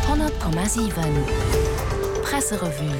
100,7 Presserevue.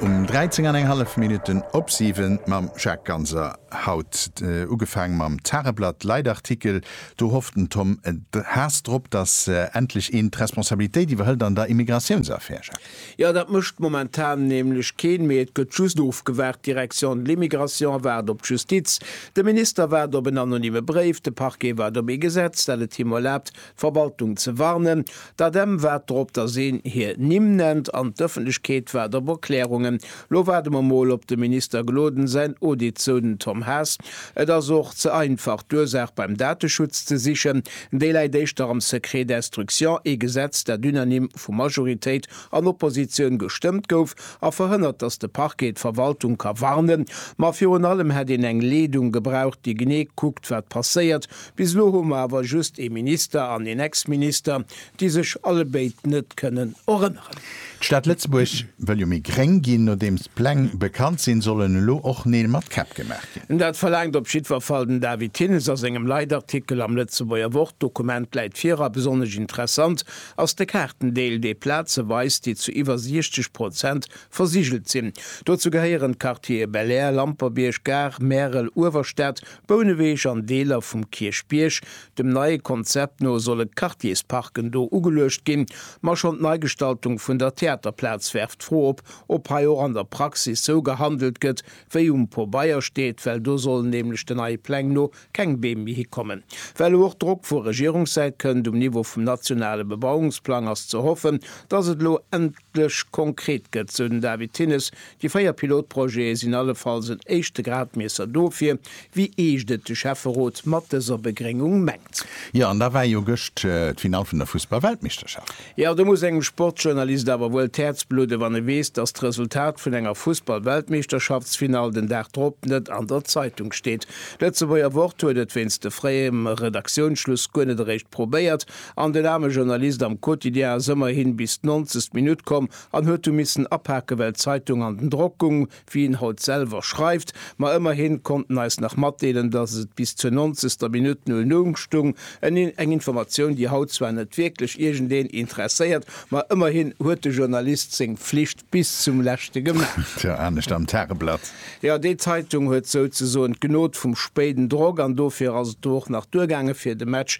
Um 13 an eng hallef Minutten op 7 mam Jacques Ganser. Haut ugefaang mam Tageblatt Leitartikel. Do hofft den Tom Haas drop, datt endlech een d'Responsabilitéit iwwerhëlt an der Immigratiounsaffär, Jacques. Jo, dat mécht momentan nämlech keen méi. Et gëtt just ofgewaart. D'Direction de l'immigration waart op d'Justiz, de Minister waart op en anonyme Bréif, de Parquet waart op ee Gesetz, dat et him erlaabt, Verwaltung ze warnen. D'ADEM waart drop, dass een hir Nimm nennt an d'Ëffentlechkeet waart op Erklärungen. Lo waarde mer mol op dem Minister Gloden säin Audit, sou den Tom Haas. Et ass och ze einfach, d'Ursaach beim Dateschutz ze sichen. Déi läit éischter am Secret d'instruction, ee Gesetz, dat unanime vu Majoritéit an Oppositioun gestëmmt gouf a verhënnert, dass de Parquet d'Verwaltung ka warnen. Ma virun allem hätt een eng Leedung gebraucht, déi genee kuckt, wat passéiert, Bis elo hu mer awer just ee Minister an een Ex-Minister, déi sech allebéid net kënnen erënneren. D'Stad Lëtzebuerg wëll jo méi gréng ginn. Nodeems d'Pläng bekannt sinn, sollen elo och Neel mat Käpp gemaach ginn. Dat verlaangt op jiddwer Fall den David Thinnes a sengem Leitartikel am Lëtzebuerger Wort. D'Dokument läit vir a besonnesch interessant ass de Kaartendeel, dee Plaze weist, déi zu iwwer 60 Prozent versigelt sinn. Dozou gehéieren d'Quartiere Belair, Lamperbierg, Gare, Märel, Uewerstad, Bouneweg an Deeler vum Kierchbierg. Dem neie Konzept no solle Quartiersparken do ugeluecht ginn. Ma schonn d'Neigestaltung vun der Theaterplaz werft d'Fro op, ob hei och an der Praxis sou gehandelt gëtt, wéi um Pobeier steet, well do sollen nämlech den neie Pläng no keng Beem méi hikommen. Well elo och Drock vu Regierungssäit kënnt um Niveau vum nationale Bebauungsplang, ass ze hoffen, dass et elo endl. Endlech konkret gëtt, sou den David Thinnes. Déi véier Pilotprojete sinn allefalls en éischte Gradmiesser dofir, wéi eescht et de Schäfferot mat dëser Begréngung mengt. Jo, an da war jo gëscht d'Finall vun der Fussball-Weltmeeschterschaft. Jo, do muss engem Sportsjournalist awer wuel d'Häerz bludden, wann e weess, dass d'Resultat vun enger Fussball-Weltmeeschterschaftsfinall den Dag drop net an der Zeitung steet. D'Lëtzebuerger Wort huet et wéinst de fréiem Redaktiounsschluss guer net eréischt probéiert, An den aarme Journalist am Quotidien ass ëmmerhin bis d'nonzegst Minutt komm an huet du missen apaken, well d'Zeitung an den Drock gung, wéi en haut selwer schreift. Ma ëmmerhin konnt en eis nach matdeelen, dass et bis zur nonzegster Minutt null Null stung, eng Informatioun, déi haut zwar net wierklech iergendeen interesséiert, ma ëmmerhin huet de Journalist seng Pflicht bis zum leschte gemaach. Tjo, anescht am Tageblatt. Jo, déi Zeitung huet souzesoen d'Gnod vum spéiden Drock an dofir ass et do och nach duergaangen, fir de Match